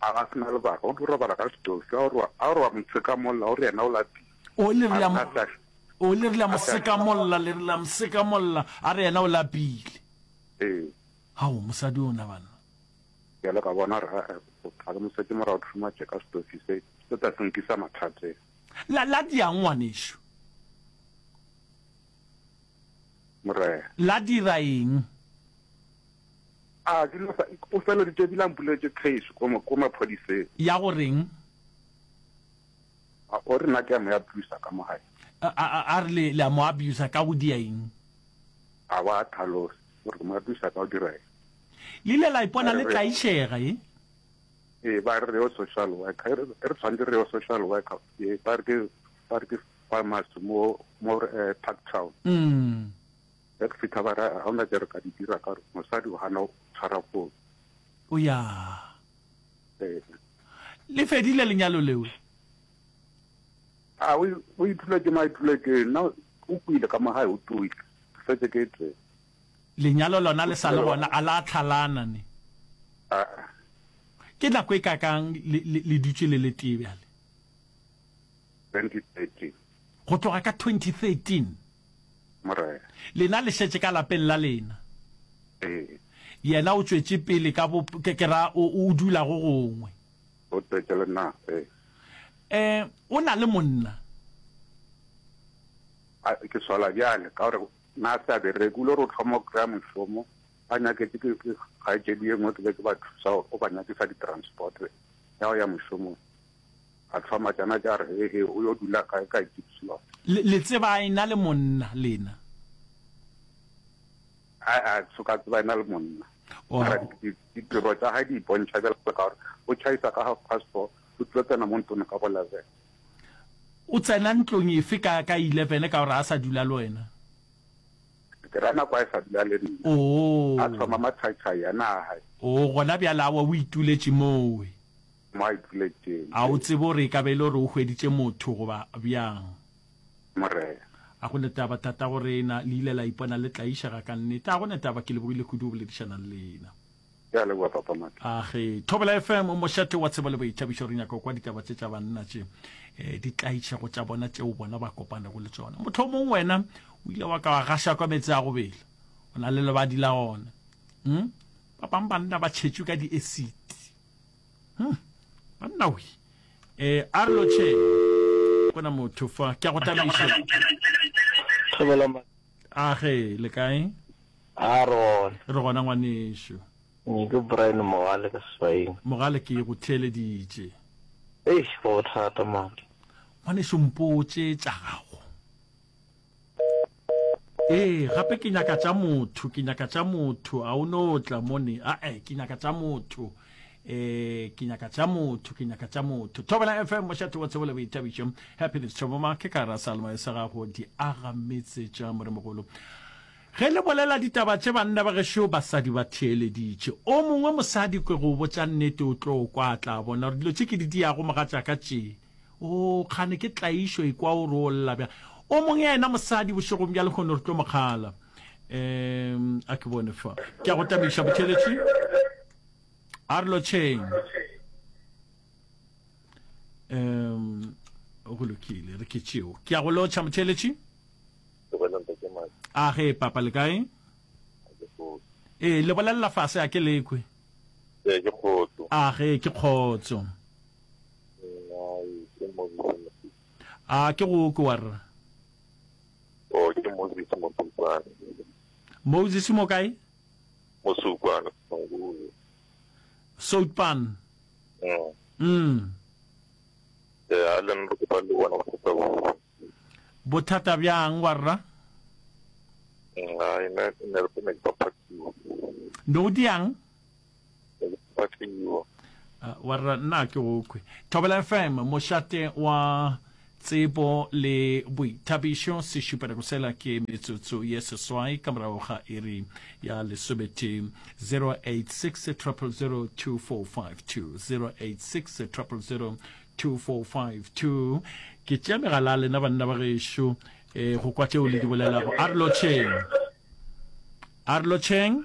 A ga se na lebaka, o tlo robala ka setofi. A gore a gore wa mo tsekamolla, o re yena o lapile. O le re la o le re la mo sekamolla, le re la mo sekamolla, a re yena o lapile. Ee. Hao mosadi o na bana. Bjale ka bona ra ga mo setse mora o thuma tše ka setofi se se tla se nkisa mathateng. La la diang ngwanešu. Morena. La dira eng? A dilo sa, o feleditše ebile a mpuletše case ko, ko maphodiseng. Ya go reng? A, o re nna ke a mo abusa ka mo gae. A, a, a, a re le, le a mo abusa ka go dia eng? A ba tlhalosa, o re ke mo abusa ka go dira eng? Le ile la ipona le tlaišega, e? Ee, ba re re yo social worker, e re, e re tshwanetse re yo social worker, ee, ba re ke, ba re ke Farmers mo mo eh, Parktown. Mm. Ge ke fitha ba ra ga ona tse re ka di dira ka re mosadi o gana o tshwara fone. O ya. Eh. Le fedile lenyalo lewe? A o o ithuletše ma ithuletše nna o kwile ka mo gae o tuile. Ke fetse ke tse. Lenyalo lona le sa le gona a la tlhalana ne. A a. Ke nako e kakang le le, le dutše le le tee bjale? 2013. Go tloga ka 2013. Morena. Lena le šetše ka lapeng la lena. Ee. Yena o tšwetše pele ka bo, ke, ke ra, o, o dula go gongwe. O tšwetše le na, ee. Ee, o na le monna. A, ke swala bjale, ka gore na a se a bereke, o ile go hloma o kry-a mošomo, ba nyaketše ke, ke kgaetšedi ye nngwe, ke be ke ba thusa gore o ba nyakisa di-transport ya go ya mošomong. A hloma tšana tša re, He-he, o yo dula kae ka Gippsland? Le, le tseba a e-na le monna, lena? A-a, ke so ka tseba e-na le monna. Oh. Mara di, di, ditiro tša gae di ipontšha bjalo ka gore o tšhaisa ka half past four, o tlo tsena mo ntlong ka bo leven. O tsena ntlong efe ka, ka eleven ka gore a sa dula le wena? Ke ra nako a e sa dula le nna. Oh. A hloma matshai-tshai a na a hae. Oh, gona bjale awa o ituletše moo. Mike, le tšeli. A o tsebe gore e ka ba e le gore o hweditše motho goba bjang? Morena. A go ne taba, Tatagorena, le ile la ipona le tlaišega ka nnete. A go ne taba, ke lebogile kudu go boledišana le lena. Ke a leboga, Papa Mike. A ge, Thobela FM, mošate wa tsebo le boithabišo, re nyaka go kwa ditaba tše tša banna tše, eh, di tlaišego tša bona tšeo bona ba kopanego le tšona. Mohlomong wena o ile wa ka wa gaša kwa meetse a go bela, o na le lebadi la ona. Hm? Ba bang banna ba tšhetšwe ka di-acid. Hmm. Banna we. Eh, Arlo Che. Kona motho fa. Ke a go tabiša. Thobela ma. A ge le kae? A re gona. Re gona ngwanešu. Ke Brian Mogale ka Swaeng. Mogale ke go theeleditše. Eish, go thata mama. Ngwanešu mpotše tša gago. ee gape ke nyaka tša motho ke nyaka tša motho a o no tla mone ae ke nyaka tša motho eh ke nyaka tša motho ke nyaka tša motho thobela fm mošate wa tsebo le boitabišo happiness tšhoboma ke ka ra salma e sa gago di aga metse tša moremogolo ge le bolela ditaba tše banna ba gešo basadi ba theeleditše o mongwe mosadi kwe go botša nnete o tlo kwa tla bona gore dilo tše ke di diyago mogatša ka tšee Oo, kgane ke tlaišo ekwa o re o lla bjang. O mong ya ena mosadi bošegong bja lehono re tlo mo kgala. Um, a ke bone fa. Ke a go tamiša, botheletši. A re lotšheng. Um, go lokile, re ke tšeo. Ke a go lotšha, motheletši. A ge, papa, le kae? Ee, le bolelela fase, a ke lekwe. A ge, ke kgotso. a ke go kwe wa rra o ke moses mosukwane moses mo kae mosukwane soutpan mm, mm. e a le nna ke palo bona go tsa go bothata bjang wa rra mm, a ina ne re pene ke papatiwa no diang wa rra nna ke go kwe thobela fm mošate wa tsebo le boithabišo se šupelego sela ke metsotso ye seswai ka morago ga iri ya lesobete 086 086 2452 ke tšea megala lena banna ba gešo e go kwa tšeo le di bolelago a re lotšheng a re lotšheng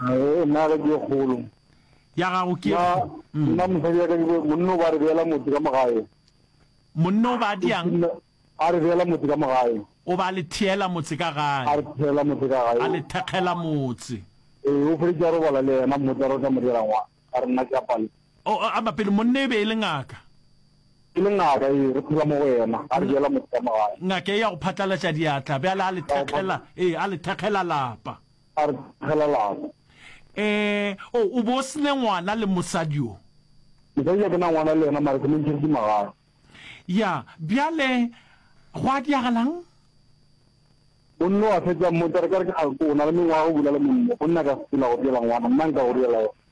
Nna ga ke ye kgolo. Ya gago ke Nna mosadi ya ka ke monna o ba re beela motse ka mogae. Monna o ba diang? A re beela motse ka mogae. O ba le theela motse ka gae. A re theela motse ka gae. A le thekgela motse. Ee, o feditse a robala le yena motse a re o tla mo dira ngwana. A re nna ke apale. O a mapele monna e be e le ngaka. E le ngaka ee re phela mo go yena. A re beela motse ka mogae. Ngaka e ya go phatlalatša diatla bjale a le thekgela ee a le thekgela lapa. a re tlogelago. Ee, o, o be o se ne ngwana le mosadi yo. Mosadi yo ke na ngwana le yena, mare ke mo ntšheditše magare. Ya, bjale gwa diagalang? Monna o a fetša a mmotša, re ka re, Ke, o na le mengwaga o bula le monna. Monna ka se tula go diela ngwana, nna nka go diela yena.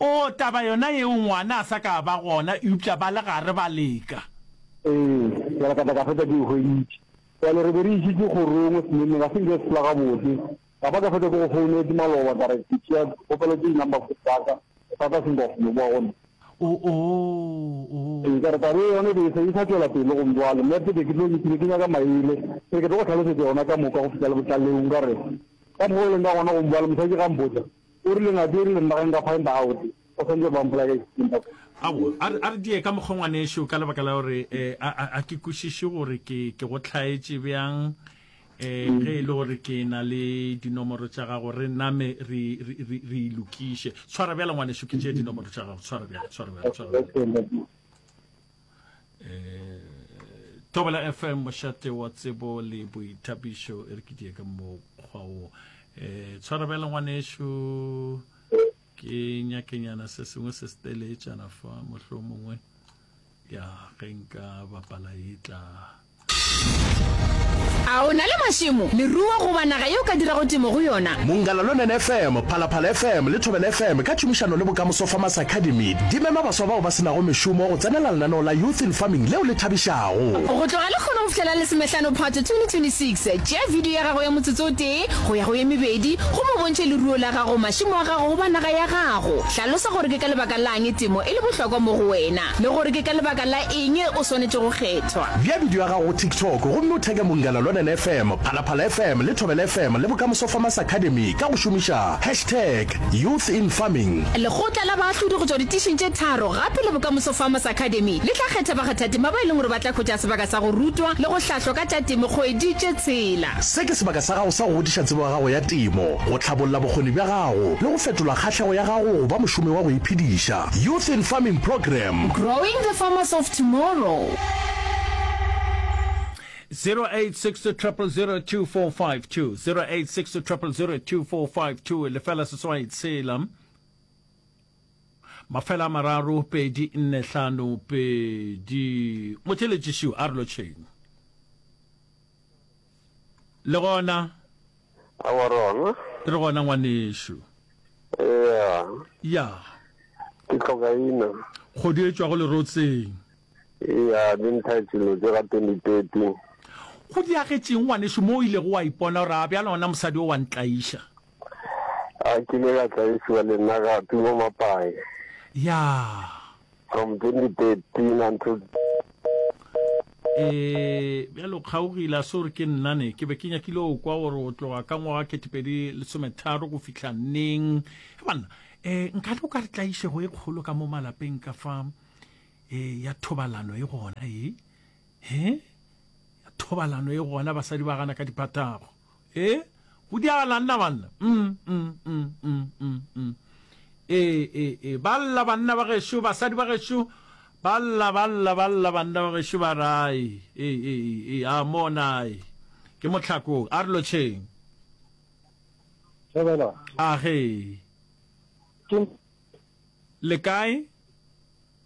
Oo, taba yona yeo ngwana a sa ka a ba gona, eupša ba le gare ba leka. Ee, ke re ka tla ka feta ke e hweditše. Bjale re be re išitše kgorong, semeneng ga se nke se sepela gabotse. Ka ba ka feta ke go founetse maloba ka re ke tšea dikgopelo tše di number phone tsa ka, bothata se nka kgone boa go nna. Oo, oo. Ee, ka re taba ye yona e be e sa, e sa tšwela pele gomme bjale nna ke be ke tlo, ke be ke nyaka maele, ke re ke tlo go tlhalosetša yona ka moka go fihla lebotlaleu. Nka re, Ka mokgwa o leng ka gona gomme bjale mosadi ge a mpotša, O rile, Na dieri le nna ge nka find out? O swantše go ba mpolaya ka eng, Papa? Aowa, a re, a re diye ka mokgwa, ngwanešu, ka lebaka la gore eh, a, a, a ke kwešiše gore ke, ke go hlaetše bjang eh, ge e le gore ke na le dinomoro tša gago, re name re, re, re, re e lokiše. Tshwara bjale, ngwanešu, ke tšee dinomoro tša gago. Tshwara bjale, tshwara bjale, tshwara bjale. tobela fm mošate wa tsebo le boithapišo e re ke die ka mokgwa wo um tshwara bjale ngwanešu ke nyakenyana se sengwe se seteletšana fa mohlomongwe ya ge nka bapala e tla A o na le mašemo, leruo goba naga yeo o ka dirago temo go yona? Mongalalonen FM, Phalaphala FM le Thobela FM ka tšhomišano le Bokamoso Farmers Academy di mema baswa bao ba se nago mešomo go tsenela lenaneo la Youth in Farming leo le thabišago. Go tloga lekgono go fihlela Lesomehlano Phatwe 2026, tšea bidio ya gago ya motsotso o tee go ya go ye mebedi gomme o bontšhe leruo la gago, mašemo a gago goba naga ya gago. Hlalosa gore ke ka lebaka la'ng temo e le bohlokwa mo go wena le gore ke ka lebaka la Eng e o swanetše go kgethwa? Bea bidio ya gago go TikTok gomme o theke Mongela Lwanen FM, Phalaphala FM le Thobela FM le Bokamoso Farmers Academy ka go šomiša hashtag Youth in Farming. Lekgotla la baahlodi go tšwa ditišing tše tharo gape le Bokamoso Farmers Academy le tla kgetha bakgathatema ba e leng gore ba tla hwetša sebaka sa go rutwa le go hlahlwa ka tša temo kgwedi tše tshela. Se ke sebaka sa gago sa go godiša tsebo ya gago ya temo, go hlabolla bokgoni bja gago le go fetola kgahlego ya gago go ba mošomi wa go iphediša. Youth in Farming Program. Growing the farmers of tomorrow. 086200024520 086200024520 lefela seswai tshela mafela a mararo pedi nne hlano pedi motheletšišiw a re lotšheng Le gona. Aowa re gona. Re gona ngwanešu. Eya. Ya. Ke tloka ina. Kgodu e tšwago lerotseng. Eya, di ntha tšelo tše ga 2030. Go diagetšeng ngwanešu mo o ilego wa ipona gore a bjalo gona mosadi o wa ntlaiša? A ke ile ka tlaišiwa le nna gape mo Mapaye. Ya. From 2013 until e bjale o kgaogile a se gore ke nnane ke be ke nyakile o kwa gore o tloga ka ngwaga ketepedi lesometharo go fitlha neng ge banna um nkane o ka re tlaišego e kgolo ka mo malapeng ka fa um ya thobalano e gona e He, ya thobalano e gona basadi ba gana ka diphatago. E, go diagalang na banna? Mm, mm, mm, mm, mm, mm. E, e, e, ba lla banna ba gešo, basadi ba gešo, ba lla, ba lla, ba lla banna ba gešo ba rai. E, e, e, e, a monai. Ke motlhakong, a re lotšheng. Thobela. A ge. Ke. Le kae?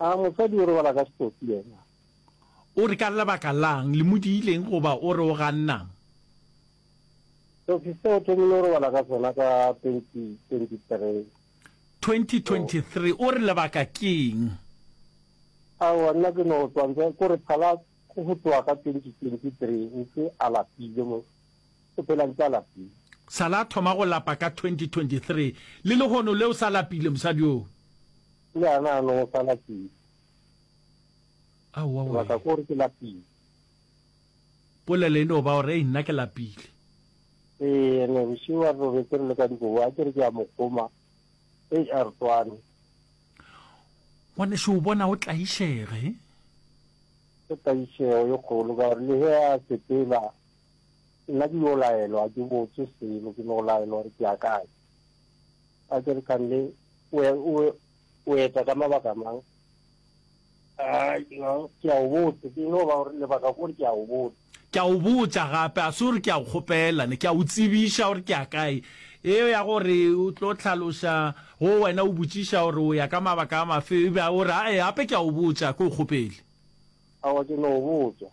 A mosadi o robala ka setopi yena? O re ka lebaka la'ng le mo diileng goba o re o ganna'ng? Setopi se o thomile o robala ka sona ka 2023. 2023, o re lebaka ke'ng? Aowa, nna ke no tswantswa ko re phala go tloga ka 2023 ntse a lapile mo. O phela ditsala tse. Sa la thoma go lapa ka 2023. Le lehono le o sa lapile, mosadi yoo? Le a na no sa lapile. Aowa, wee. Sebaka ke gore ke lapile. Polelo e no ba gore, Ei, nna ke lapile. Ee, ene bošiu a re robetse re le ka dikobo, a ke re ke a mo kgoma. Ei, a re tšwane. Ngwanešu o bona o tlaišege. Ke tlaišego e kgolo ka gore le ge a sepela Nna ke yo laelwa, ga ke botse selo, ke no laelwa gore ke a kae. A ke re, Kande, o eta ka mabaka mang? Ke a o botse, ke no ba gore lebaka ke gore ke a o botse. Ke a o botsa gape, ga se gore ke a o kgopela, ne ke a o tsebiša gore ke a kae. Yeo ya gore o tlo hlaloša go wena, o botšiša gore o ya ka mabaka a mafe, e ba o re, Ae, gape ke a o botsa, ga ke o kgopele. Aowa, ke no o botsa.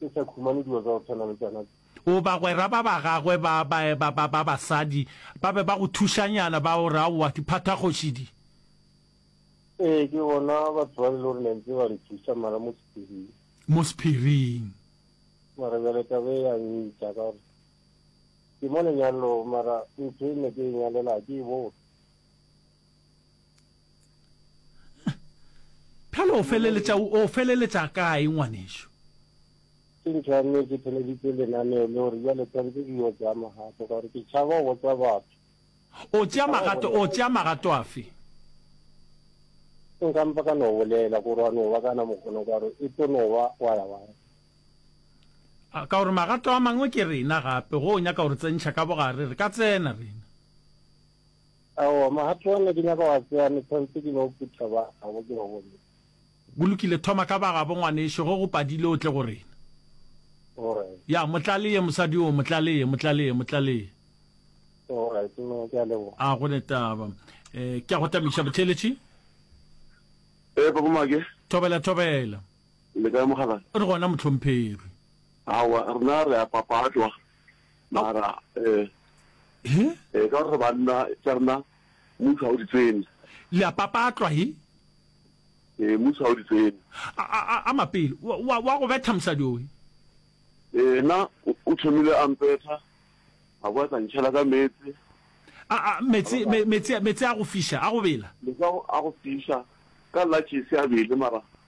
Ke sa khumane dilo tsa go tshwana le tsona tse. O bagwera ba ba gagwe ba ba ba ba ba basadi ba be ba go thušanyana ba o re aowa diphathakgoši di. Ee, ke bona batho ba le lore ne ntse ba re thuša mara mo sephiring. Mo sephiring. Mara bjale tabe ya ntša ka gore ke mo lenyalong mara ntho e ne ke e nyalela ke e bone. Bjalo o feleletša o feleletša kae ngwanešu? Ke ntho ya nnete, ke theleditše lenaneo le gore bjale tshwanetse ke yo tšea magato ka gore ke tšhaba go botsa batho. O tšea magato, o tšea magato afe? Nka mpa ka no bolela gore wa no ba kana mokgono ka gore e tlo no ba wa ya wa ya. A ka gore magato a mangwe ke rena gape go o nyaka gore tsentšha ka bogare re ka tsena rena. Aowa, mogato wa ne ke nyaka wa tsea metheo tse di ba o phutha ba gabo ke ba bomme. Go lokile, thoma ka ba gabo ngwanešu, ge go padile o tle go rena. Alright. Ya, mo tlaleye mosadi oo, mo tlaleye, mo tlaleye, mo tlaleye. Alright, mme, ke a leboga. A go ne taba. E, ke a go tamiša, Botheeletši. Ee, Papa Maake. Thobela, Thobela. Le kae, Mokgalabje? Re gona, Mohlomphegi. Aowa, rena re a papatlwa. mara eh he eh ka gore banna tša rena mutho ha o di tsene le a papatlwa he eh mutho ha o di tsene a mapele wa wa go betha mosadi owe eh na o thomile a mpetha a boa tla ntšhela ka metse a metse metse metse a go fisha a go bela metse a go fisha ka latše se a bele mara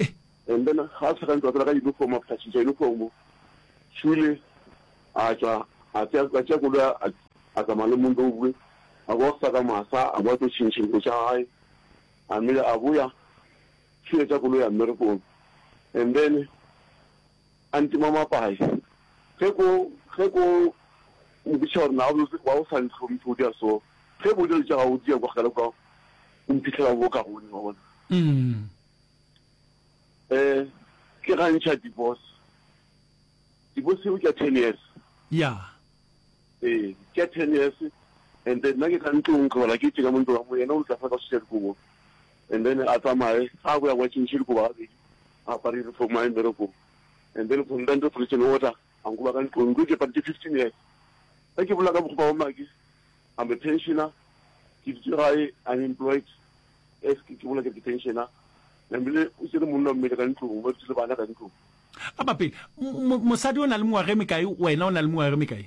eh. And then ga se gantsi ba tsena ka uniform a phašiša uniform Shule a tšwa a tšea koloi a tsamaya le Mondobue a boa go sa ka masa a boa tlo tšhintšha dilo tša gae a mele a boya Shule tša koloi ya mmerekong and then A ntima mapae. Ge ko, ge ko mpitša gore na o ba o sa ntlhomphe, o dira so. Ge bo dilo tša gago o di ya kwa kgale kwa, o mphihlela mo bokaone, wa bona. Um ke ga ntšha divorce. Divorce eo ke ya ten years. Ya. Ee, ke ya ten years. And then nna ke ka ntlong, ke robala ke tšeka mo ntlong, yena o ntlafatsa o šetša dikobo. and then a tsamaye ga go ya kwa tšhentšhele goba gabedi a apare uniform a ye mmerekong and then from then to prison order a nkuba ka ntlong ntlo ke padi ke fifteen years ge ke bolela ka bokgopa wa maki I'm a pensioner ke ditse gae unemployed as ke bolela ke ke pensioner namile o tsere monna mmele ka ntlong ba dutse le bana ka ntlong a ba pele mosadi o na le mengwaga e mekae wena o na le mengwaga e mekae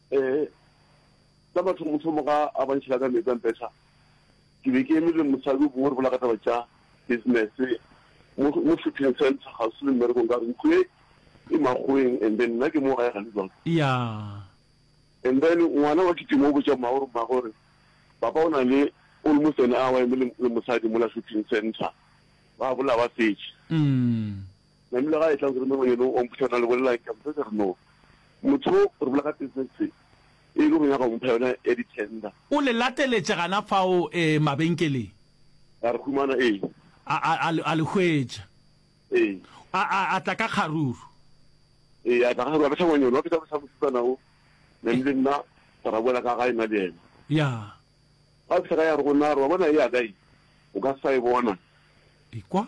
Ee, ka mathomothomo ga a ba ntšhela ka meetse a mpetha, ke be ke eme le mosadi o bongwe re bola ka taba tša business mo mo shopping centre kgauswi le mmerekong ka re ntlo e e makgoweng and then nna ke mo gae gane jwang. Yeah. And then ngwana wa kitima o botša mmago gore mmago gore papa o na le almost an hour eme le mosadi mola shopping centre ba bola ba fetše. Namile ga a etla go rena yeno wa mphuša na le bolelang ka mphe sere no motho re bola ka tss e le go nyaka go mpha yona ya di tender. O le lateletše gana fao ee mabenkeleng. A re humana ee. A a a a le hwetša. Ee. A a a tla ka kgaruru. Ee a tla ka kgaruru a betha ngwanyone wa betha bosa mosetsana o Namile nna ka ra boela ka gae nna le yena. Ya. Ga fihla ka ya re go na re wa bona e ya ka e o ka sa e bona. Ekwa.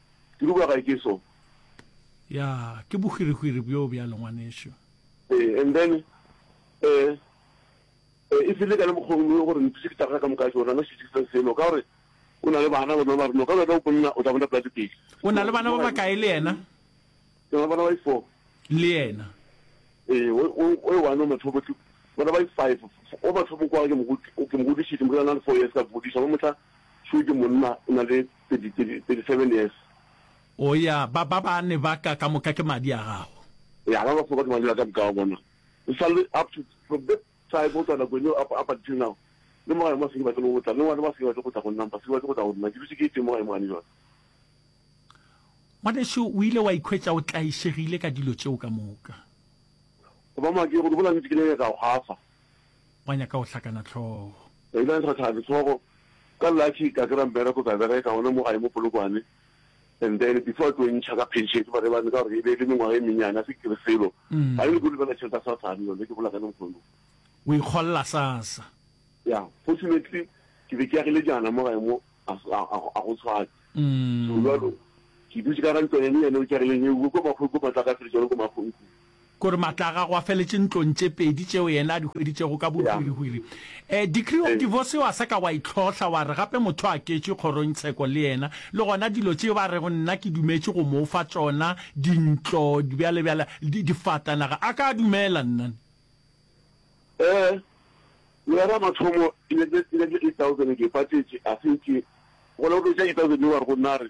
Ke dukwa gae ke so. Ya, ke bohwirihwiri bjo bjalo, ngwanešu. Ee, and then, ee, ee, e file ka le mokgong yo gore ntse ke tagga ka moka tšona, no šetše se selo, ka gore o na le bana, bona ba reno, ka bjaka o bonna, o tla bona pela dipedi. O na le bana ba bakae le yena? Ke na le bana ba i-four. Le yena? Ee, o, o, o e one o mathobo, ke bana ba i-five. O mathobo kwa ke mo, ke mo godišitše, mo ke na le four years ka godiša, ba motla šoo ke monna, o na le. 37 years. O ya, ba, ba bane ba ka, ka moka ke madi a gago. Ya, ba ba foka ke madi a ka moka, wa bona. O sa le, up to, from that time, go tloga nakong eo, up, up until now, le mo gae mo a se ke batle le go tla, le ngwana mo a se ke batle go tla go nna, ba se ke batle go tla go nna, ke dutše ke eteng mo gae mo gane jwale. Ngwanešu, o ile wa ikhwetša o tlaišegile ka dilo tšeo ka moka. Go ba maa, ke go di bola nnete, ke ne ke nyaka go gafa. Ba nyaka go hlakana hlogo. Ba ile ba ntsha thari hlogo. Ka Lucky ka kry-a mmereko ka bereka gona mo gae mo Polokwane and then before a tlo ntšha ka pension ke Maribane ka gore e be e le mengwaga e mennyane a se kere selo. Ga ke nyake go lebella tšhelete ya Sasane yone ke bolela ka lehono. O ikgolla Sasa. Yeah, fortunately ke be ke agile jaana mo gae mo a go tshwane. So jalo ke dutše ka ga ntlwana e nyenyane o ke agileng eo ko Makgong ko Matlakatšhe le tšone ko Makgong kua. Ke gore maatla a gagwe a feletše ntlong tše pedi tšeo yena a di hweditšego ka bohwirihwiri. Um, decree of divorce wa sa ka wa e hlohla, wa re gape motho a ketšwe kgorongtsheko le yena, le gona dilo tšeo a rego nna ke dumetše go mo fa tšona, dintlo, bjale, bjale, di, difatanaga, a ka a dumela, nna. Ee, Lehera mathomo, e ne e, e ne e thousand ke patšetše, a fetše, gona o fetša eight thousand, o a re go nna, a re,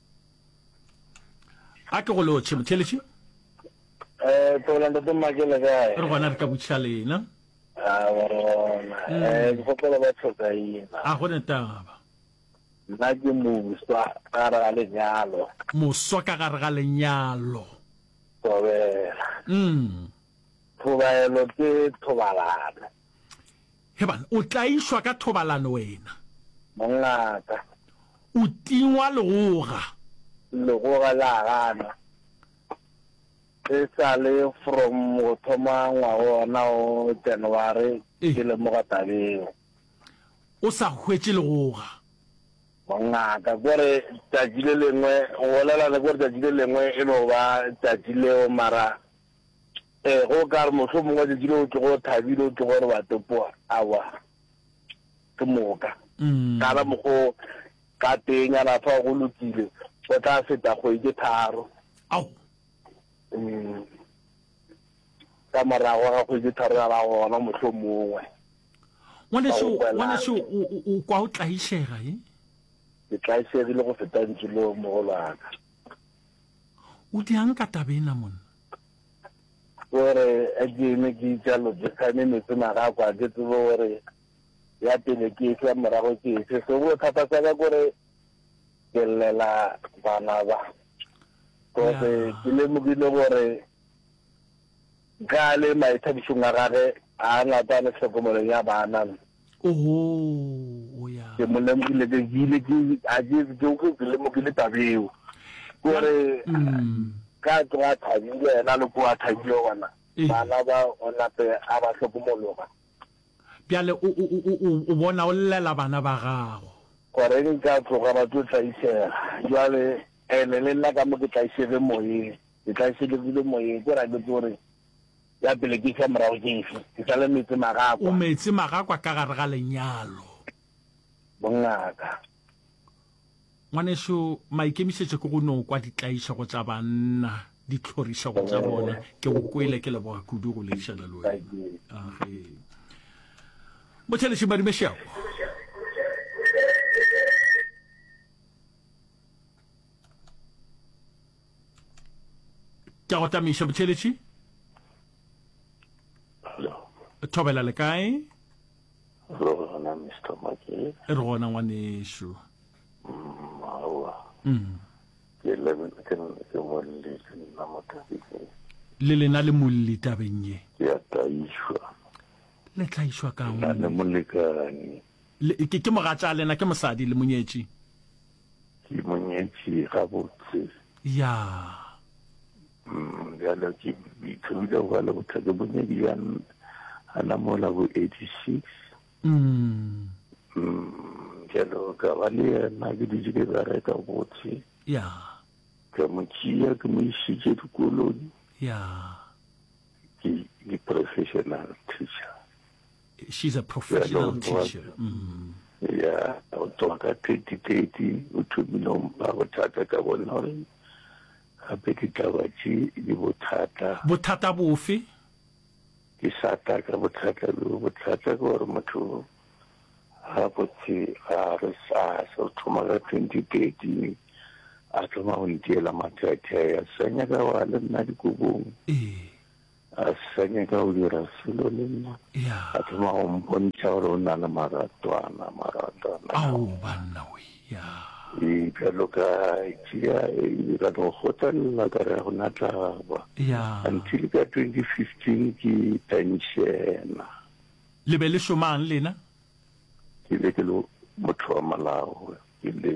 a ke go lotšhe motheletši eh tsola ntate mmake le kae re gona re ka botšha lena a wa rona Mm. eh ke gopola ba tlhoka ina a go ne taba nna ke muswa ka re ga lenyalo moswa ka gare ga lenyalo tobela mm Thobaelo ke thobalano. He bana, o tlaišwa ka thobalano wena. Mongaka. O tingwa legoga. Legoga la gana. E sa le from go thoma ngwaga wona o January Eh. ke lemoga tabeo. O sa hwetše legoga. Mongaka. Kore tšatši le lengwe, go bolela le kore tšatši le lengwe e no ba tšatši leo mara Ee, go ka re mohlho mongwe tšatši le o tlogo thabile o tlogo re batopo awa ke moka mm. kala mogo ka teng a nafa go lokile go tla feta go ike tharo mm. ka morago ga go ike tharo ya la gona mohlho mongwe ngwaneso o kwa o tlaisega e ke tlaisegile go feta ntse le mogolwana O diang ka taba ena monna? Ke gore a ke eme ke itša lodikgane metsi magako a ke tsebe gore ya pele ke efe ya morago ke efe so bothata sa ka kore ke llela bana ba kose ke lemogile gore ka le maithabišong a gage a ngata le tlhokomelong ya bana Ohoo, o ya. Ke mo lemogile, ke bile ke, a ke, ke, ke, ke lemogile tabeo. Ke gore, ka tloga a thabile, yena le ko a thabile gona, Ee. bana ba o nape a ba hlokomologa. Bjale o, o, o, o, o bona o llela bana ba gago. Gore eng ka tloga ba tlo tlaisega. Bjale, ene le nna ka mo ke tlaisege moyeng, ke tlaišegegile moyeng. Ke ra ke tsore, Ya pele ke efe, ya morago ke efe? Ke sa le metsemagakwa. O metsemagakwa ka gare ga lenyalo. Bongaka. Ngwanešu, maikemišetšo ke go no kwa ditlaišego tša banna, ditlhorišego tša bona. Ke go kwele, ke leboga kudu go leišana le wena. Age. Mothelešimadi Mešeago. ke a go tlamiša botheletši thobela le kae re gona mr make re gona ngwanešu mm, aowa mm. ke molletse nna mo tabeng ye le lena le molli tabeng ye ke a tlaišwa le tlaišwa kang le molekane ke mogatša lena ke mosadi le monyetši Ke mo nyetše gabotse. Ya. Bjale ke ithomile go ba le bothata ke bonyedi bja gana mola bo 86. Bjale ka ba le yena ke dutše ke bereka botse. Ya. Ka mo tšea ke mo išitše dikolong. Ya. Ke di-professional teacher. She's a professional teacher. Mm. Yeah, o tloga ka 2030 o thomile ba bothata ka bona gore gape ditaba tše di bothata. Bothata bofe? Ke sata ka bothata bo bothata ke gore motho ga botse ga re sa so thoma ka 2030 a thoma go ntiela mathethe ya senya ka wa le nna dikobong. Ee. A sa nyaka go dira selo le nna. Ya. A thoma go mpontšha gore o na le maratwana, maratwana. Ao, banna we, ya. Ee, bjalo ka tšea ee, ka no kgotlelela ka re go na tla ba. Ya. Until ka 2015 ke penšena. Le be le šomang lena? Ke be ke le motho wa malao, ke le.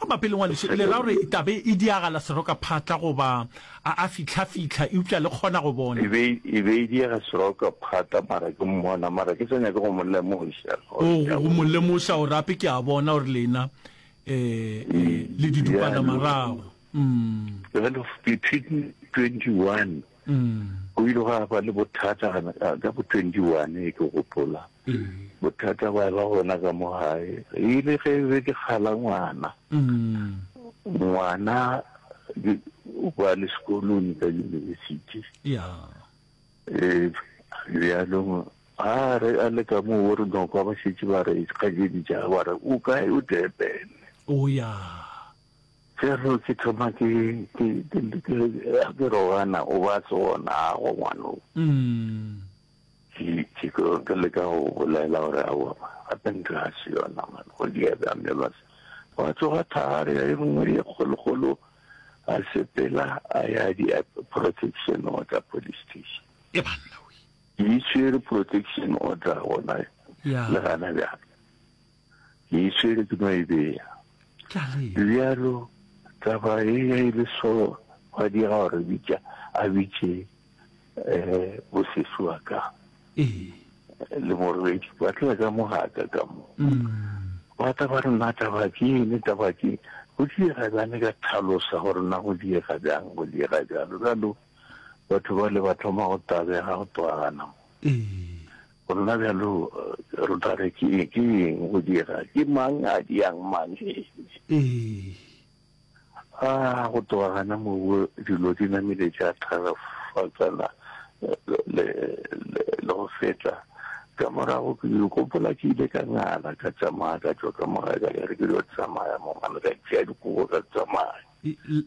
Mabapi le Ngwadišo, e le ra gore e tla be e diagala serokaphatla goba a a fihlafihla eupša le kgona go bona? E be e diega serokaphatla, mara ke mmona, mara ke sa nyake go mo lemoša. Oo, go mo lemoša gore gape ke a bona gore lena le didupanamarago. Jwale, Dipit. 21. Go ile gwa ba le bothata ka bo 21, ke gopola. Bothata ba eba gona ka mo gae. E ile ge be ke kgala ngwana. Ngwana o ba le sekolong ka yunibesithi. Bjalong a re a le ka mo o re nokwa ba šetše ba re kgajedi ja ba re o kae o Durban. Fero ke thoma ke rogana o ba tsona go ngwano. Ke ke leka go bolela gore a wa gape ntho ya se yona man go di ya ba me ba se wa tsoga thari ya engwe ye kgolo kgolo a sepela a ya di protection order police station. E banna we. Di tshwere protection order gona le gana bjang. ke e tšere ke no e bea. Bjalo, taba e ya e le so, gwa diega gore bitša, a bitše um bosesi wa ka le morwedi, ba tla ka mo gaka ka mo. Ba tla ba re, na taba ke eng, taba ke eng, go diega bjang, ka tlhalosa gore na go diega bjang, go diega bjalo. Bjalo batho bale ba thoma go tabega, go twagana mo. Gona bjalo re tla re ke eng go dira? Ke mang a diang mang? Ee. A go tloga gana moo dilo di namile tša tharafatsana le go feta. Ka morago ke gopola ke ile ka ngala ka tsamaya ka tšwa ka morago ka ya re ke yo tsamaya mo ngwana ka tšea dikobo ka tsamaya.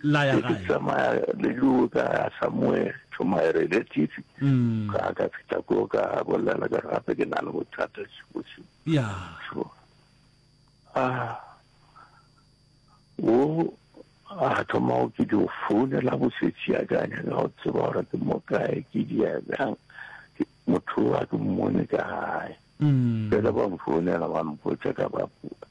laya gae tsamaya le yo ka ya somewhere to my relative mm. ka ka fita ko ka bolela ka gape ke na le bothata sibotsi ya so ah wo a thoma go ke dio founela bosetsi ya ka nya ka go tseba gore ke mo kae ke di ya bjang motho wa ke mmone ka gae mm. fela ba mfounela ba mpotsa ka ba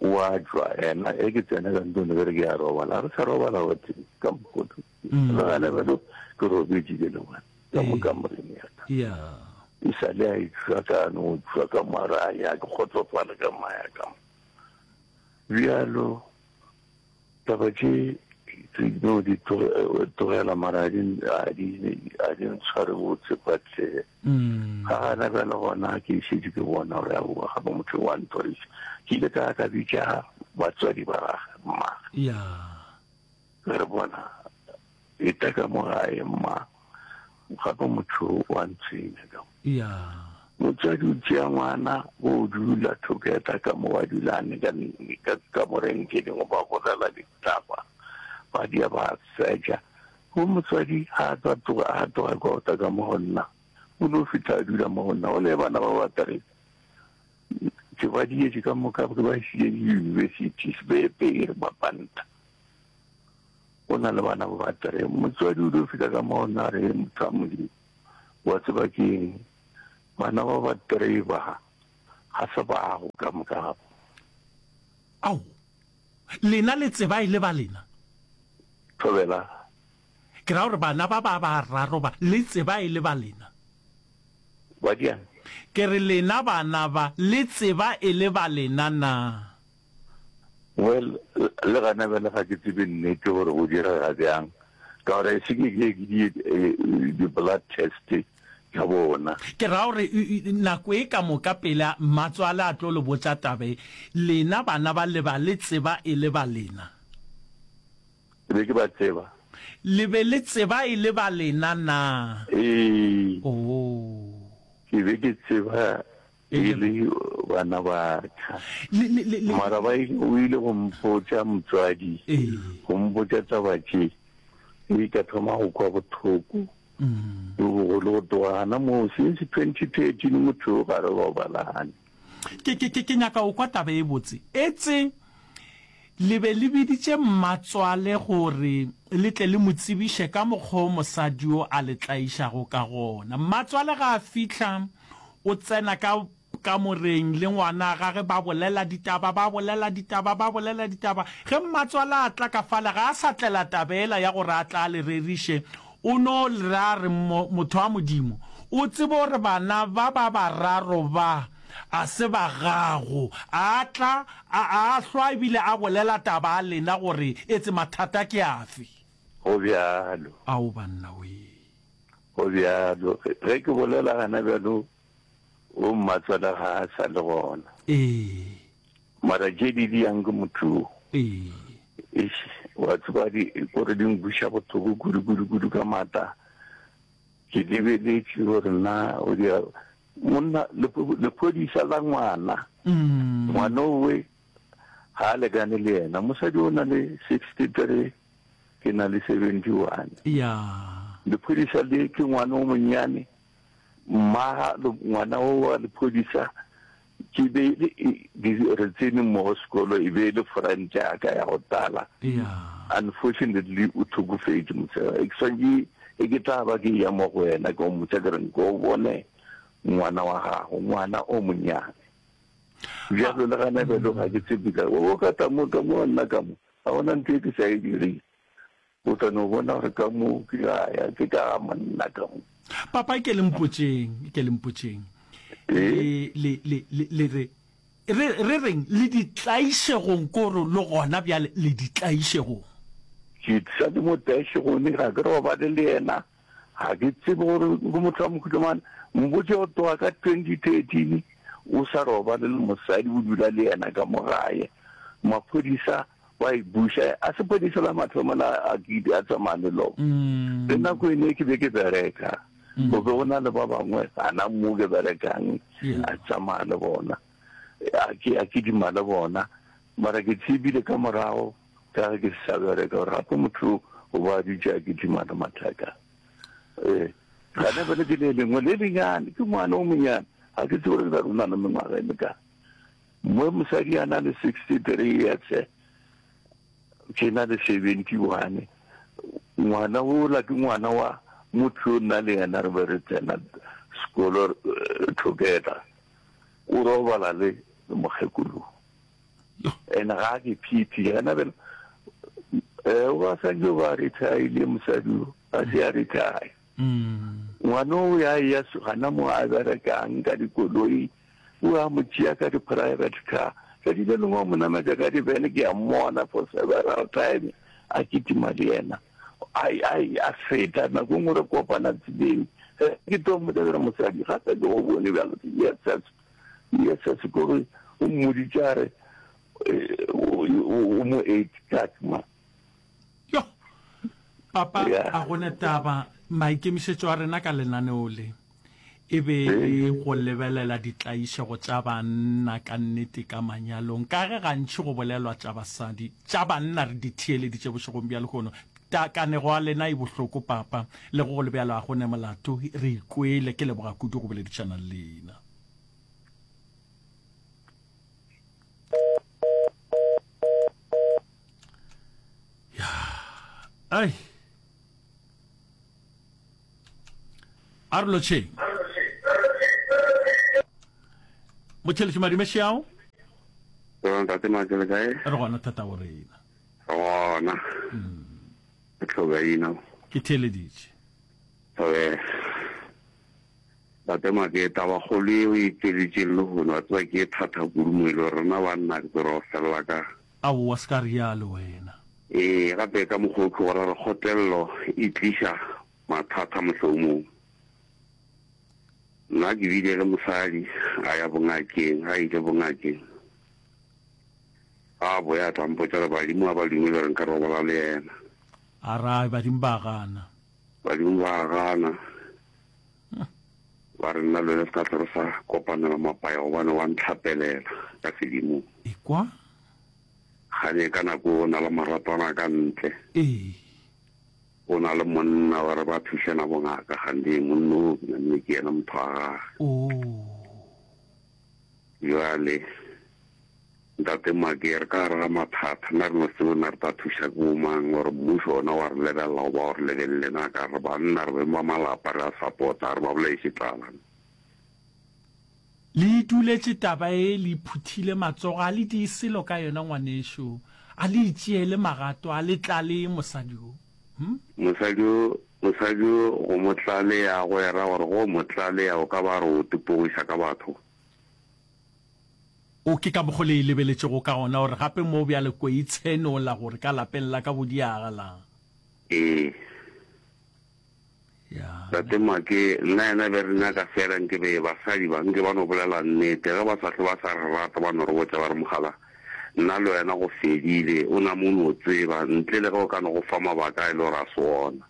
wa jwa ena e ke tsena ka ntone bere ke ya robala re sa robala wate ka mokoto logale mm. belo ke robetše ke le ngwana ka mo ka moreng ya ka e sa le a itswa ka no tswa ka mara ya ke kgotsofala ka maya ka bjalo Taba tše tse no di tlogela mara a di a di a di ntshware botse but eh, mm. ga gana bjale gona ke šedi ke bona gore ya boa ga ba motho wa nthoreša ke ile ka ka bitša batswadi ba gage mmaga re bona Eta ka mo gae, mma. Gape motho o a ntshwenya ka mo. Ya. Motswadi o tšea ngwana, bo o dula together ka mo, ba dula a neka ka kamoreng tše dingwe, ba bolela ditaba, ba dia, ba seja. Bo motswadi ha a tla tloga, ha a tloga kwa ota ka mo go nna, o no fihla a dula mo go nna. Gole bana ba ba tare tše ba dietše ka moka, ke ba išitše di-universities, be pere ba panta. o na le bana ba ba three. Motswadi o dio fihla ka mo ona a re, Motho wa Modimo, wa tseba ke eng? Bana ba ba three ba, ga se bago ka moka ga bo. Ao, lena le tseba e le ba lena? Thobela. Ke ra gore bana ba ba bararo ba, le tseba e le ba lena? Badiane. Ke re lena bana ba, le tseba e le ba lena na? Well, le gona bjale ga ke tsebe nnete gore go direga bjang, ka gore a se ke ke ke di di-blood test tša bona. Ke ra gore nako e ka moka pele mmatswale a tlo le botša taba e, lena bana ba le ba le tseba e le ba lena? Ke be ke ba tseba. Le be le tseba e le ba lena na? Ee. Oo. Ke be ke tseba E le bana ba ka. Mara ba ile, o ile go mpotša motswadi, go mpotša taba tše, e ka thoma go kwa bothoko. Bo bogolo go tloga gana moo, since 2013 motho yo ga re robalane. Ke, ke, ke, ke nyaka go kwa taba e botse. Etse le be le biditše mmatswale gore le tle le mo tsebiše ka mokgwa o mosadi yo a le tlaišago ka gona. Mmatswale ga a fihla, O tsena ka kamoreng le ngwana gage ba bolela ditaba, ba bolela ditaba, ba bolela ditaba. Ge mmatswala a tla ka fale ga a sa tlela taba ela ya gore a tla a le reriše. O no ra re, Mo, motho wa Modimo, o tsebe gore bana ba ba bararo ba a se ba gago. A tla, a, a hlwa ebile a bolela taba a lena gore etse mathata ke afe. Go bjalo. Ao, bannawee! Go bjalo, ge ke bolela gana bjalo, wo mmatswale ga a sa le gona. Ee. Mara tše di diyang ke motho wo. Ee. Eish, wa tseba di gore di nkwiša bothoko kudu kudu kudu ka maata. Ke lebeletše gore na o di monna lephodisa la ngwana. Ngwana owe ga a lekane le yena. Mosadi o na le sixty three. Ke na le 71. Yaa. Lephodisa le ke ngwana o monyane. Mmaga ngwana o wa lephodisa ke be re tsene mmogo sekolo e be e le friend ya ka ya go tala. Yaa. Unfortunately o thokofetše mosega. Ke swantše e ke tla ba ke ya mo go wena ke o motsa ke reng ke o bone ngwana wa gago ngwana o monyane. Bjalo le gana bjalo ga ke tsebe ka o ka tla mo ka mo nna ka mo. Ga go na ntho e ke sa e direng. O tla no bona gore ka moo ke a ya, ke ka ga monna ka mo. Papa, ke le mpotšeng, ke le mpotšeng. Le, le, le, le, le re, re, re reng, le ditlaišegong ko re le gona bjale, le ditlaišegong. Ke sa le mo tlaišegong, ga ke robale le yena. Ga ke tsebe gore ke motho wa mohuta mang. Mpotše go tloga ka 2013 o sa robale le mosadi, o dula le yena ka mo gae. Maphodisa ba e buša, a sepodisa la mathomo la Agidi a tsamaya le lona. Le nako ene ke be ke bereka, go be go na le ba bangwe gana mo ke berekang, a tsamaya le bona, a kidima le bona. Mara ke tsebile ka morago, ka ge ke se sa bereka, gore gape motho o ba a dutše a kitimana mathaka. E, gane fela ke le lengwe le lenyane, ke ngwana o monyane, ga ke tsebe gore ke tla runa le mengwaga e mekang. Mo mosadi a na le sixty three years, ke na le seventy one. Ngwana ola ke ngwana wa motho yo nna le yena re be re tsena sekolo together, o robala le mokgekolo. and ga ke phiphi ga na bela eh ba sa jo ba retire mosadi a se a retire mm. ngwana o ya ya gana mo a berekang ka dikoloi o a mo tšea ka di-private car tsatsi le lengwe mo nametsa ka dibene ke a mmona for several time a kitima le yena ai ai a feta nako e ngwe re kopana tseleng eh, ke to mmotsa mosadi gape ke go bone bjalo yes Yesese ko re o mmoditše a re o mo eight kat ma. Yo! Papa, a gona taba, maikemišetšo a rena ka lenaneo le e be e go lebelela ditlaišego tša banna ka nnete ka manyalong, ka ge gantši go bolelwa tša basadi, tša banna re di theeleditše bošegong bja lehono. Ta kanego a lena e bohloko papa, le go go le bjalo a go ne molato, re ikwele, ke leboga kudu go boledišana le lena. Ai. Arloche. Mocheletši madimešeao? Ntate Makele kae? Re gona thata o rena. Gona. Ke tlhoka ina. Ke theeleditše. Oke. Bate maketa ba kgolo e o e tšeletšeng le hono wa tseba ke e thatha kudu mo e le rena banna ke tsere wa felela ka. Aowa se ka rialo wena. Ee gape ka mokgwa o tlogo ra re kgotelelo e tliša mathata mohlomong. Nna ke bile le mosadi a ya bongakeng a ile bongakeng. A boya a tla mpotša re badimo ga ba dumele gore nka robala le yena. A ra, Badimo ba a gana. Badimo ba a gana. Ba re nna le wena se ka tlho re sa kopanela mapaya gobane wa ntlhapelela ka sedimong. Ekwa. Ga ne ka nako o na le maratwana ka ntle. Ee. O na le monna wa re ba thušana bongaka gandee monna o ke na mme ke yena motho wa gage. Oo. Bjale, Ntate Maki, re ka gare ga mathata. Na re no tsebe na re tla thuša ke bomang, gore mmušo ona wa re lebelela goba wa re lebelele na? Ka re, Banna re beng ba malapa, re a sapota, a re ba bolaiše tlala. Le iduletše taba ye, le iphuthile matsogo, ga le die selo ka yona, ngwanešu. A le itšeele magato, a le tlale mosadi wo. Mosadi yo, mosadi yo go mo tlalea a go era gore go mo tlalea o ka ba re o tepogiša ka batho. O, ke ka mokgo le e lebeletšego ka gona gore gape mo bjale ko e tshenola gore ka lapeng la ka go diagalang. Ee. Tate Make, nna yena be re nyaka fela nke be basadi ba, nke ba no bolela nnete. Ge ba sa hlwe ba sa re rata ba no re botša ba re, Mogala, nna le wena go fedile, o nama o no tseba, ntle le ge o ka no go fa mabaka a e le gore a se wona.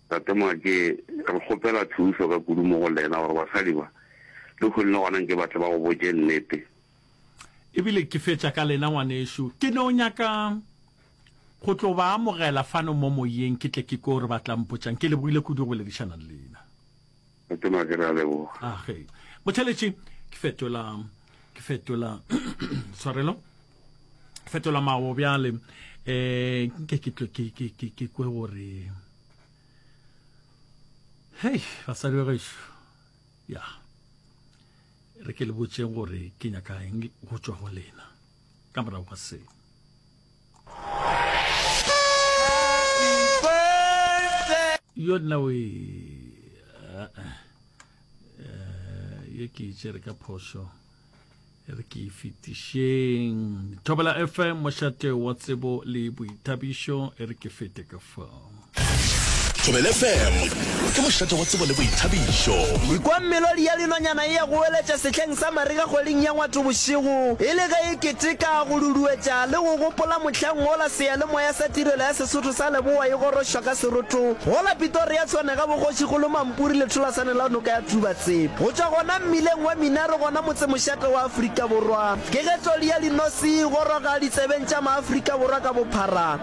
Tate Make, re kgopela thuso ka kudu mo go lena gore basadi ba, lehono le gona nke ba tle ba go botše nnete. E bile ke fetša ka lena, ngwanešu. Ke no nyaka go tlo ba amogela fano mo moyeng, ke tle ke kwe gore ba tla mpotša'ng. Ke lebohile kudu go boledišana le lena. Motona, ke re a leboga. Ah, ge. Motheletši, ke fetola, ke fetola, tshwarelo, ke fetola mawo bjale, eh, nke ke tle ke, ke, ke, ke kwe gore, hei, basadi ba gešo, ya. Yeah. Re ke le botšeng gore ke nyaka eng go tšwa go lena ka morago ga seo. yo nna o e eh, eh, eh, ye ke itse re ka phoso re ke fetišeng thobela fm mošate wa tsebo le boithabišo e re ke fete ka fao Thobele FM ke mošate wa tsebo le boithabišo. Ikwa melodi ya linonyana e ya go weletša sehleng sa marega kgweding ya Ngwato bošego e le ge e keteka, go duduetša le go gopola mohlang wola seyalemoya sa Tirelo ya Sesotho sa Leboa e gorošwa ka seroto go la Pitoria Tshwanega bogošigolo mampuri letholasane la noka ya Tubatsep. Go tšwa gona mmileng wa Minaro gona motsemošate wa Afrika Borwa, kegetlodi ya linosi e goroga ditsebeng tša Maafrika Borwa ka bophara.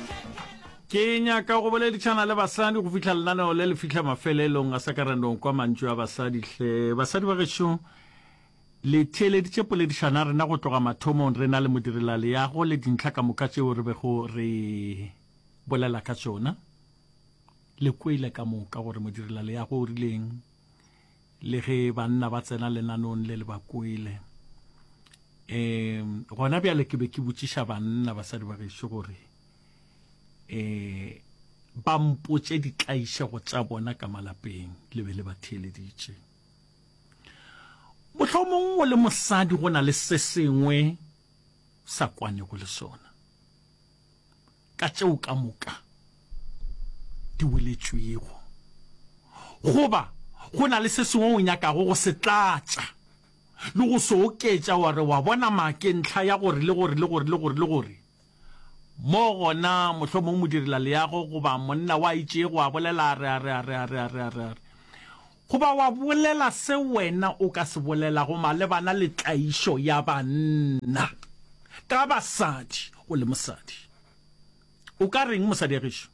Ke nyaka go boledišana le basadi go fihla lenaneo le le fihla mafelelong a sa ka ra no kwa mantšu a basadi hle. Basadi ba gešo le theeleditše poledišana rena go tloga mathomong re na le modirelaleago le dintlha ka moka tšeo re bego re bolela ka tšona. Le kwele ka moka gore modirelaleago o rileng. le ge banna ba tsena lenanong le le ba kwele um gona bjale ke be ke botšiša banna basadi ba gešo gore um ba mpotše ditlaišego tša bona ka malapeng le be le ba theeleditše mohlomong o le mosadi go na le se sengwe sa kwanego le sona ka tšeo ka moka di boletšwego, goba go na le se sengwe o nyakago go se tlatša le go se oketša, wa re wa bona ma ke ntlha ya gore le gore le gore le gore le gore, mo gona mohlomongwe modirelaleago goba monna wa itšego a bolela a re, a re, a re, a re, a re, a re, a re. Goba wa bolela se wena o ka se bolelago malebana le tlaišo ya banna ka basadi o le mosadi. O ka reng, mosadiagešu?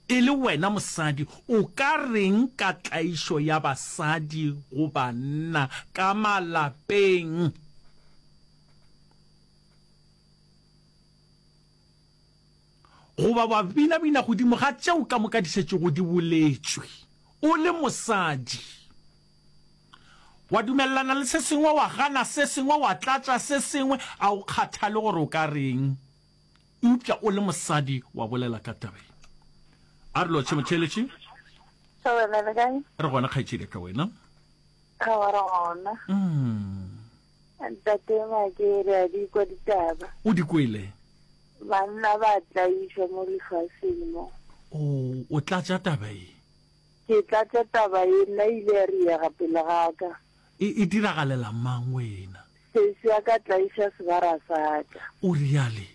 E le wena mosadi, o ka reng ka tlaišo ya basadi go banna ka malapeng? Goba ba binabina godimo ga tšeo ka moka di šetšego di boletšwe. O le mosadi. Wa dumelelana le se sengwe, wa gana se sengwe, wa tlatša se sengwe, a o kgathale gore o ka reng. Eupša o le mosadi wa bolela ka taba ye. A re lotšhe motheeletši. Ka wena le kae? Re gona kgaetšedi ya ka wena. Ga wa re gona. Mm. Ntate Makere a di kwa ditaba. O di kwele? Banna ba tlaišwa mo lefaseng mo. O, o tlatša taba e? Ke tlatša taba e, nna ile ya riega pele ga ka. E, e diragalela mang wena? Sesi ya ka tlaiša sebara sa ka. O reale?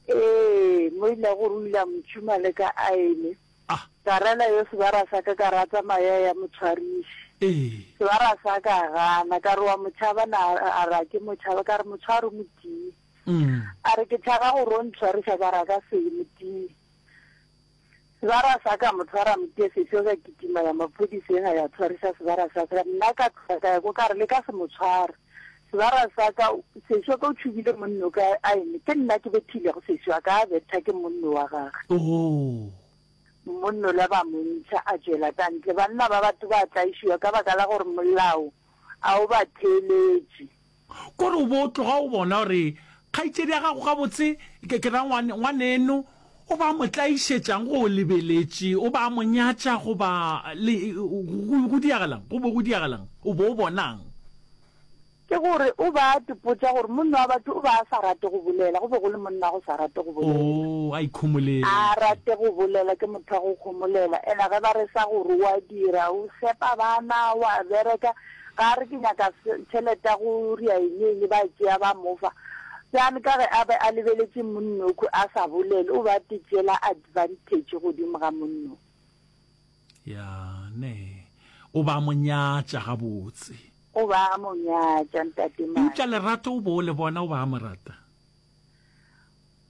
Ee, mo ile gore o ile a mo tšhuma le ka aene. A. Ka rela yo sebara sa ka, ka rata maya ya motshwariši. Ee. Sebara sa ka a gana, ka re wa mo tšhaba na, a re a ke mo tšhaba, ka re motshwari motii. Mm. A re ke tšhaba gore o ntshwariša, ka re a ka se motii. Sebara sa ka mo tshwara motie sefio, ka kitima ya maphodiseng a ya tshwariša sebara sa ka, nna ka tloga ka ya ko ka re le ka se mo tshware. Sebara sa ka, sešo wa ka o tšhubile monno ka aene, ke nna ke bethilego sešo wa ka, a betha ke monno wa gage. Oo! Monno la ba mo ntšha, a tšwela ka ntle. Banna ba batho ba tlaišiwa ka baka la gore molao a o ba theeletše. Kore o bo tloga o bona gore kgaitšedi ya gago gabotse, ke, ke ra ngwane, ngwaneno O ba mo tlaišetšang go o lebeletše, o ba mo nyatša goba le, go, go diagalang, go be go diagalang, o be o bonang? Ke gore o ba tipotša gore monna wa batho o be a sa rate go bolela, go be go le monna a go sa rate go bolela. Oo, a ikhomoletše. A a rate go bolela, ke motho wa go khomolela. Ena ge ba re sa gore o a dira, o fepa bana, o a bereka, Ga a re, Ke nyaka se, tšhelete ya go ria eng le eng, ba e tšea ba mo fa. Bjale ka ge a be a lebeletše monnokho a sa bolele, o be a te tšeela advanthetše godimo ga monnokho. Ya, nee. O be a mo nyatša gabotse. O be a mo nyatša, Ntate Madi. Eupša lerato o be o le bona, o be a mo rata.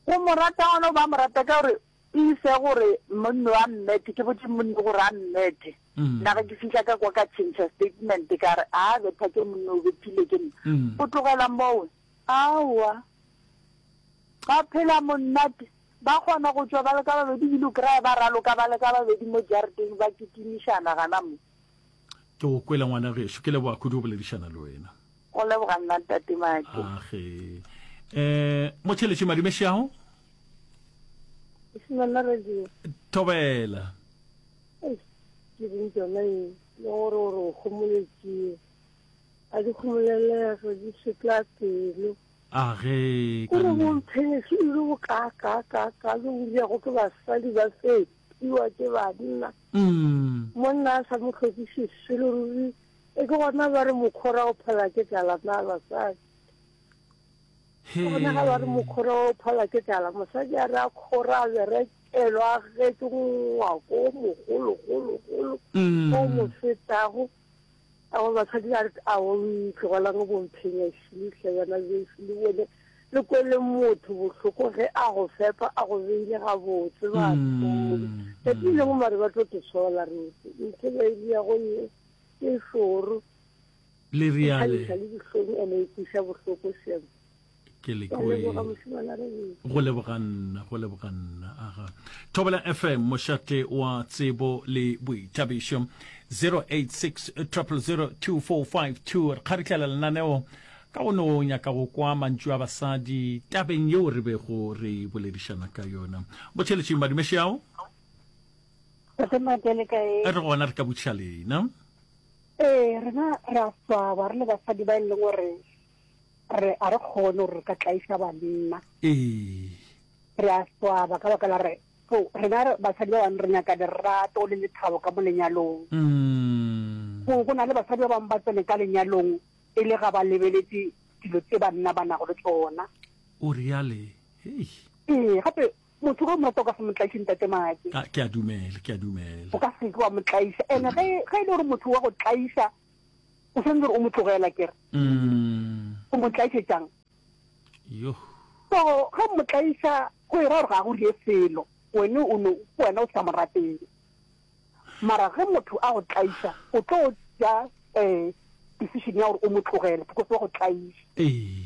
Go mo rata gona, o be a mo rata ka gore Ke ise gore monno a mmethe, ke botše monno gore a mmethe. Nna ge ke fihla ka kwa ka tšhentšha statement ka re, A betha ke monno o bethile ke nna. Go tlogela moo, aowa. Ba phela monnate. Ba kgona go tšwa ba le ka babedi ebile o kry-a ba raloka ba le ka babedi mo jareteng ba kitimišana gana mo. Ke go kwele ngwana gešo. Ke leboga kudu go boledišana le wena. Go leboga nna ntate Maki. Age. Eh, mo tšheletše madume shago. Simela radio. Thobela. Eish, ke reng tsona e le gore gore o kgomoletšee a di kgomolelego di šetla pelo age ka gore bo mpheneso e le bo ka ka ka ka le bodiago ke basadi ba fepiwa ke banna mm. monna a sa mo tlhokiše selo ruri E ke gona ba re mokhora o phala ke tlala na basadi. Ke gona ga ba re mokhora o phala ke tlala mosadi a re a khora a berekelwa a getse ngwako o mogologologolo mm. o mo fetago ao basadi ba re a o ntlogelang bomphenya šile hle bana beso le bone le kwele motho bohloko ge a go fepa a go beile gabotse batho mm. ka tileng mare ba tlo te sola rete ntse ba ile ya go ye Ke šoro. Le riale. Ke le dihlong ene e kwiša bohloko shem. Ke le kwe. Go leboga nna, go leboga nna. Aha. Thobela FM mošate wa tsebo le boithabišo 086 000 2452 re kgaritlela lenaneo ka go no nyaka go kwa mantšu a basadi tabeng yeo re bego re boledišana ka yona botšheletšeng madumešeao Tatemate le kae? A re gona re ka botšiša lena. Ee, rena re a swaba re le basadi ba e leng gore re a re kgone gore re ka tlaisa banna. Ee. Re a swaba ka baka la re so rena basadi ba bangwe re nyaka lerato le lethabo ka mo lenyalong. Mm. Go go na le basadi ba bangwe ba tsene ka lenyalong e le ga ba lebeletse dilo tse banna ba nago le tsona. O reale. Hey. Ee, gape Motho ge o mo rata o ka se mo tlaiše ntate Maake. Ah, ke a dumela, ke a dumela. O ka se ke wa mo tlaiša. Ene ge ge e le gore motho wa go tlaiša o sentse gore o mo tlogela kere. Mm. O mo tlaiše jang? Yo. So ge o mo tlaiša go e ra gore ga go rie selo. Wene o no wena o sa mo rateng. Mara ge motho a go tlaiša o tlo ja eh decision ya gore o mo tlogele because wa go tlaiša. Ee.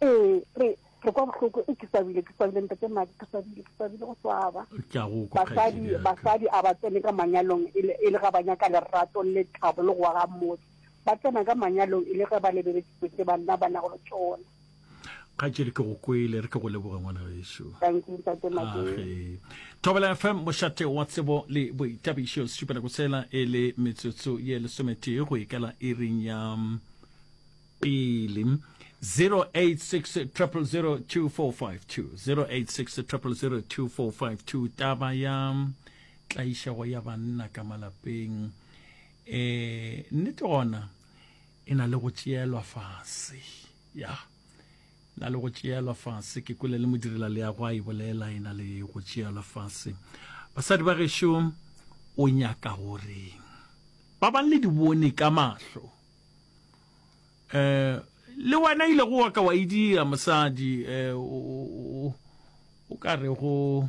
Ee, re, re kwa bohloko, e, ke swabile, ke swabile, Ntate Madi, ke swabile, ke swabile go swaba. Tla go kwa, Basadi, kgaetšedi ya ka. basadi a ba tsene ka manyalong e le, e le ga ba nyaka lerato le thabo le go aga motse. Ba tsena ka manyalong e le ge ba lebeletšwe tše banna ba nago le tšona. Kgaetšedi, ke go kwele, re ke go leboge ngwana gešo. Thank you, Ntate Madi. Age. Thobela FM, mošate wa tsebo le boitabišo, setšupelako sela e le metsotso ye lesometee go ikela iring ya mm, pele 0860002452 taba ya tlaišego ya banna ka malapeng e nnete gona e na le go tšeelwa fase ya na le go tšeelwa fase ke kwele le modirela leago a e bolela e na le go tšeelwa fase basadi ba gešo o nyaka goreng ba bang le di bone ka mahlo um le wena ile go wa ka wa e dira mosadi um o ka re go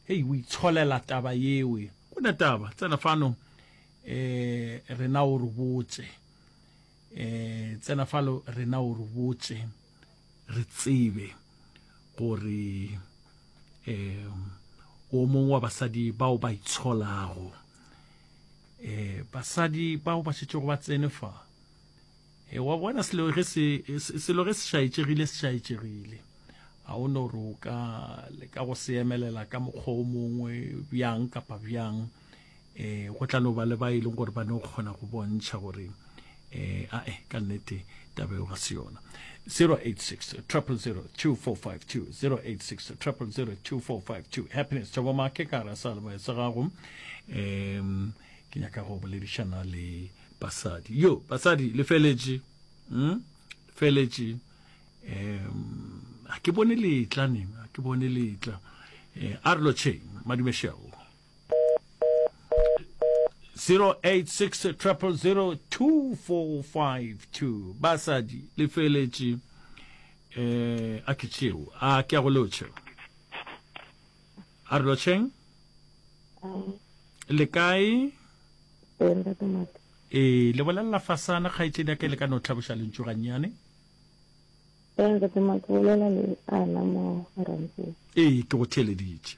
hei o itsholela taba yewe go ne taba tsena fano um rena o re botse um tsena falo rena o re botse re tsebe gore um o mongwe wa basadi bao ba itsholago um basadi bao ba šetšego ba tsene fa e wa bona selo ge se selo ge se šaetšegile se šaetšegile ga o no roka le ka go se emelela ka mokgwa o mongwe bjang kapa bjang um go tla no ba le ba e leng gore ba no kgona go bontšha gore um ae ka nnete taba eo ga se yona 086 000 2452 086 000 2452 happiness tšabo make ka ra sa leboya sa gago um ke nyaka go boledišana le basadi yo basadi le feletše um feletše um a ke bone letla neng a ke bone letla um a re lotšheng madumešego 0860002452 basadi le feletše eh a ke tšeo a ke a go lotšhe a re lotšheng le kae e le bolelela fasana kgaetšedi ya ka le ka no tlhaboša lentšu gannyane ee ke go theeleditše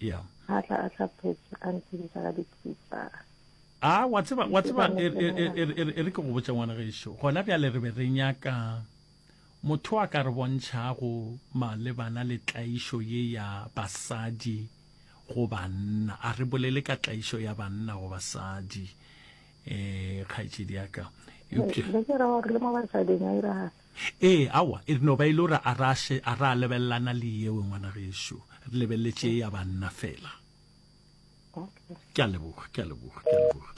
yeah a tla a tla phetse a ntshedisa ka dipitsa a wa tseba wa tseba e re e, e, e, e ke go botsa ngwana gešo gona bjale re be re nyaka motho a ka re bontšhago malebana le tlaišo ye ya basadi go banna a re bolele ka tlaišo ya banna go basadi um kgaetšedi yaka le ke ra gore le mo basading a iragala Ee, aowa, e no ba e le gore a ra še a ra lebelelana le yewe, ngwana gešo. Re lebeleletše ye ya banna fela. Okay. Ke a leboga, ke a leboga, ke a leboga.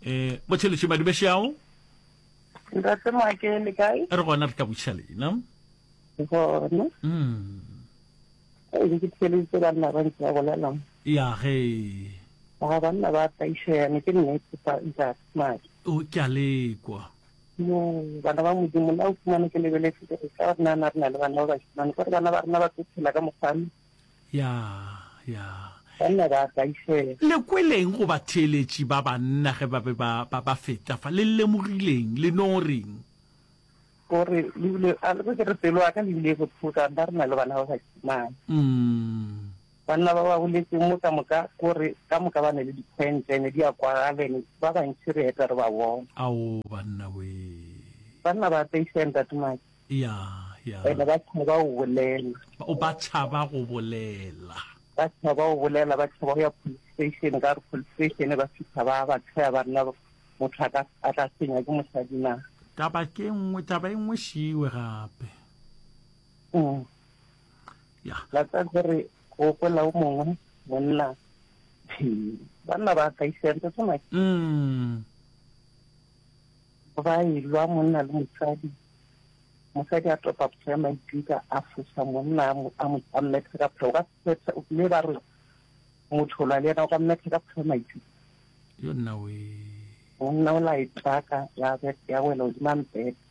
Eh, Botšheletše Madibešeago? Ntate Maake, le kae? Re gona re ka botšha lena. Gona. Mm. Ke ke tšheletse banna ba ntse ba bolelang. Ya ge. Ga banna ba taišeane ke nnete fa ntate Maake. O ke a lekwa. Yo, bana ba Modimo, la o fumane ke lebeletse gore ka gore nana re na le bana ba bashimane, gore bana ba rena ba tlo tshela ka mokgwano. Ya, ya. Banna ba kaisela. Le kweleng go batheeletši ba banna ge ba be ba, ba, ba feta fa? Le lemogileng? Le no reng? O re, le bile, a le bo ke re, pelo ya ka le bile e bothokang, ba re na le bana ba bashimane. Umm. Banna ba ba boletšeng mo ka moka ko re ka moka ba ne le dikhwentšha ene di a kwagala ene ba bantši re eta re ba bona. Ao banna wee. Banna ba taiša ntate Maki. Ya, ya. Ene ba tšhaba go bolela. O ba tšhaba go bolela. Ba tšhaba go bolela ba tšhaba go ya police station ka gore police station e ba fihla ba ba tsheya banna motho a ka a tla senya ke mosadi na. Taba ke nngwe taba e nngwe šiwe gape. Mm. ya la tsa gore go kwela o mongwe monna banna ba sa isentse tsona mm ba e lwa monna le mosadi mosadi a topa pso ya maikutlo a fosa monna a mo a mmethe ka pheo ka phetsa o kile ba re motho la le ena o ka mmethe ka pheo maikutlo yo nna we monna o la e tsaka ya ya wela o dimang phetsa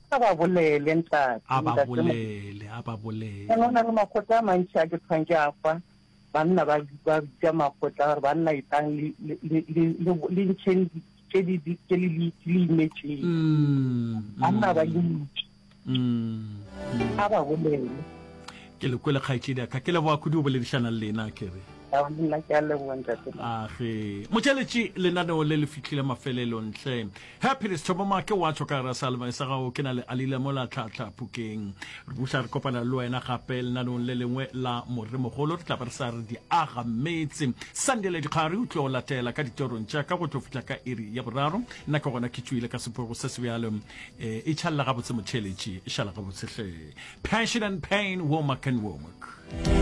A ba bolele, ntate. A ba bolele, a ba bolele. Go na le makgotla a mantši a ke thwang ke a kwa, banna ba bitša makgotla gore banna etlang le ntšheng tše le imetšeng. Banna ba le ntši. A ba bolele. Ke le kwele kgaetšedi ka ke leboa kudu o boledišana le lena ke re. Nna ke a leboa ntate. Age. Motšeletši lenaneo le le fihlile mafelelo ntle Happiness Thoboma ke wa tswa ka gara salma sa gago ke na le alile mola tlhatlha phukeng re buša re kopana le wena gape lenanong le lengwe la moremogolo re tla ba re sa re di aga metse sandele dikgare o tlo latela ka ditorong tša ka go tlo fihla ka iri ya boraro nna ke gona ke tswile ka sepogo se se bjalo eh, e tšhalela gabotse motheletši e šala gabotse hle passion and pain womak and womak